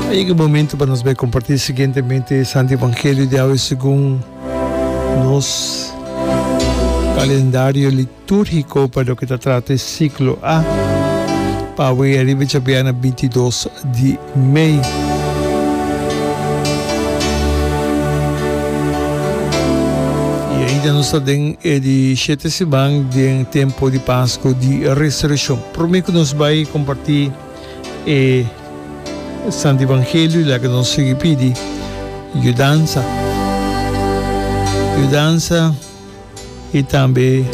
A yega e momento pa nos bai comparti siguientemente e Santo Evangelio di awe segun nos calendario liturgico pa loke ta trata e ciclo A. Pa awe ariba e chapiana bintidos di mei. I ainda nos ta den e di shete siman den tempo di Pasco di Resurreccion. Prome cu nos bay comparti e Santo Evangelio laga nos sigui pidi yudansa, yudansa y tambe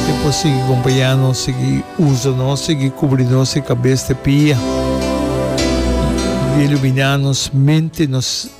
e por sigui compaña nos, sigui usa nos, sigui cubri nos e cabes te pia, di lumina nos mente, nos.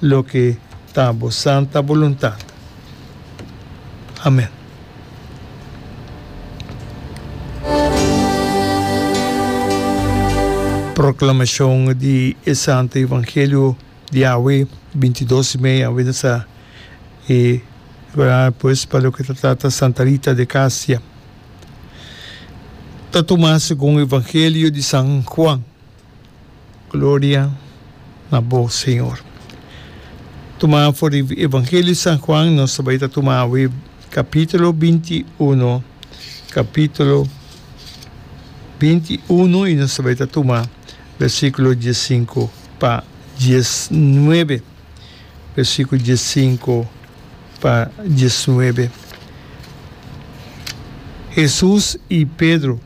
Loke ta bo santa boluntat. Amen. Proclamacion di e santo evangelio di awe, binti dos mei, awe nos a e preparar pues pa loke ta trata Santa Rita de Casia. Ta tuma segun evangelio di San Juan. Gloria na bo Señor. Tumá for di Evangelio di San Juan nos ta bai ta tuma awe capítulo binti uno capítulo binti uno y nos ta bai ta tuma versículo dies sinku pa dies nuebe versículo dies sinku pa dies nuebe. Jesús y Pedro.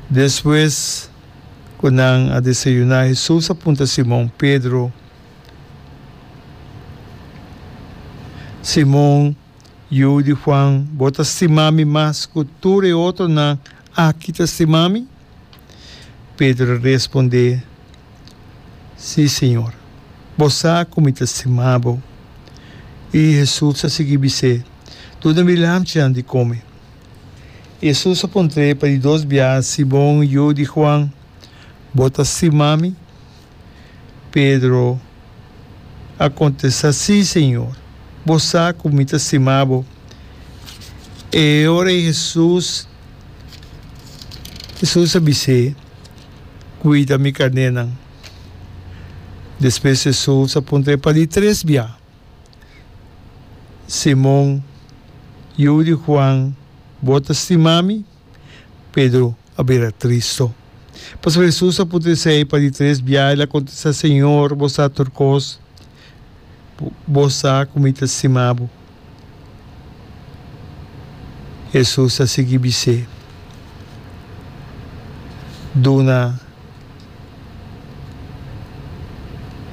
Despues cu nan a desayuna, Hesus a punta Simon Pedro, Simon, yu di Juan, bo ta stima mi mas cu tur e otronan aki ta stima mi? Pedro a responde, Si, Señor, bo sa cu mi ta stima bo. Y Hesus a sigui bis'é, Duna mi lamtjan di come. Hesus a puntrae pa di dos bia, Simon, yu di Juan, bo ta stima mi? Pedro a kontesta, Si, Señor, bo sa ku mi ta stima bo. E ora ei Hesus Hesus a bis'é, Kuida mi karnénan. Despues Hesus a puntrae pa di tres bia. Simon, yu di Juan, bo ta stima mi? Pedro a bira tristo. Pasobra Jesus a puntra esei pa di tres bia, el a kontesta, Señor, bo sa tur kos, bo sa ku mi ta stima bo. Jesus a sigui bis'é, Duna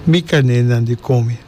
mi kanénan di kome.